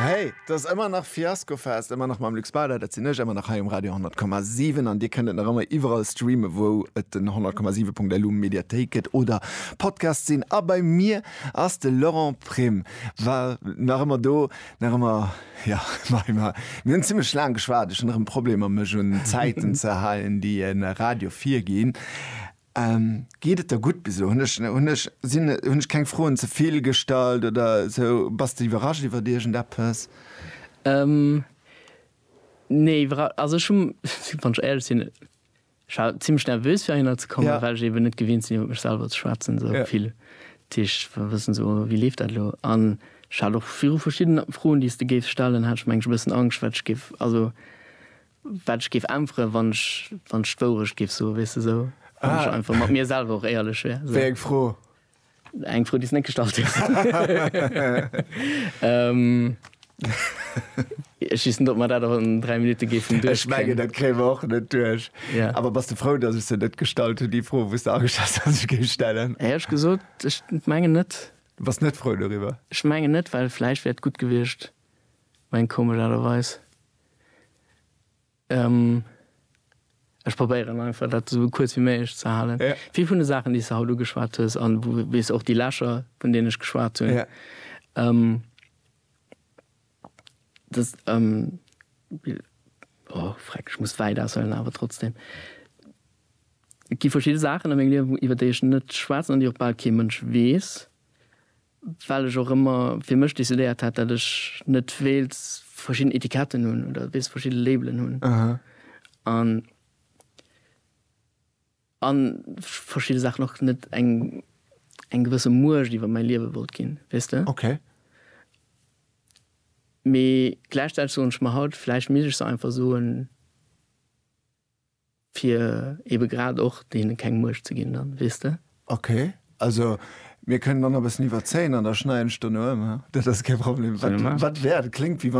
Hey, et ass ëmmer nach Fiaskofest, ëmmer nach mam Luc Spader, dat sinn ech, ëmmer nach hei um Radio 10,7 an Dir kënnt et nach ëmmer iwwerall streamen, wou et den 100,7.lu Mediathéik gëtt oder Podcast sinn. A bei mir ass de Laurent Prim, war nach ëmmer do, nach ëmmer ja mei mar mir hunn zimmlech laang geschwat, ech hunn erëm Problemer mech un d'Zäiten ze halen, déi e Radio virginn. Geet et der gutt bis elo? Hunn ech hunn ech sinn hunn ech keng Froen ze vill gestallt oder sou? Bass de iwwerrascht iwwert iergend eppes? Nee iwwerra also ech hu wann ech éierlech sinn ech war zimlech nervös fir heihinner ze kommen well ech eben net gewinnt sinn iwwer mech selwer ze schwätzen sou vill d'Tiischt wa wëssen sou wéi leeft dat elo an ech hat och viru verschiddene Froen déi s de géifs stellen hat ech mengen ech e bëssen Angscht wat ech géif also Wat ech géif äntweren, wann ech, wann ech d'Wourecht géif soen, weess de, esou, wann ech einfach mat mir selwer och éierlech wär, esou. Wéi eng Fro? Eng Fro, déi s de net gestallt hues. Ech weess net, ob mer dat och an dräi Minutte géifen duerchkriegen. Ech mengen, dat kréie mer och net duerch. Yeah. Awer bass de frou, datt ech se net gestallt hunn, déi Fro, wou s de ageschat hues, datt ech géif stellen? Hei hu ech gesot, ech mengen net. Du bass net frou doriwwer? Ech mengen net, well vläicht wär et gutt gewiescht, Eng komesch Aart a Weis. Ech probéieren einfach dat esou kuerz wéi méiglech ze halen. Vill vun de Saachen, déi s de haut ugeschwat hues, a wéi s och déi Lächer, vun deenen ech geschwat hunn, dës, o freck, ech muss wäit aushuelen, awer trotzdeem, et gi verschidde Saachen a mengem Liewen, iwwer déi ech net schwätzen an déi och bal kee Mënsch weess. well ech och ëmmer fir mech decidéiert hat, dat ech net wéilt verschidden Etiketten hunn oder weess verschidde Labelen hunn an a verschidde Saachen och net eng eng gewësse Muecht iwwer mäi Liewe wollt ginn, weess de? Okay. Mee gläichzäiteg soen ech mer haut, vläicht misst ech se einfach soen. Fir eben grad och deenen keng Muecht ze ginn dann, weess de? Ok, also mir kënnen dann nach e bëssen iwwerzéien an da schneiden ech dono ëm, dat ass kee Problem. Wat wäert, kléngt wéi wann.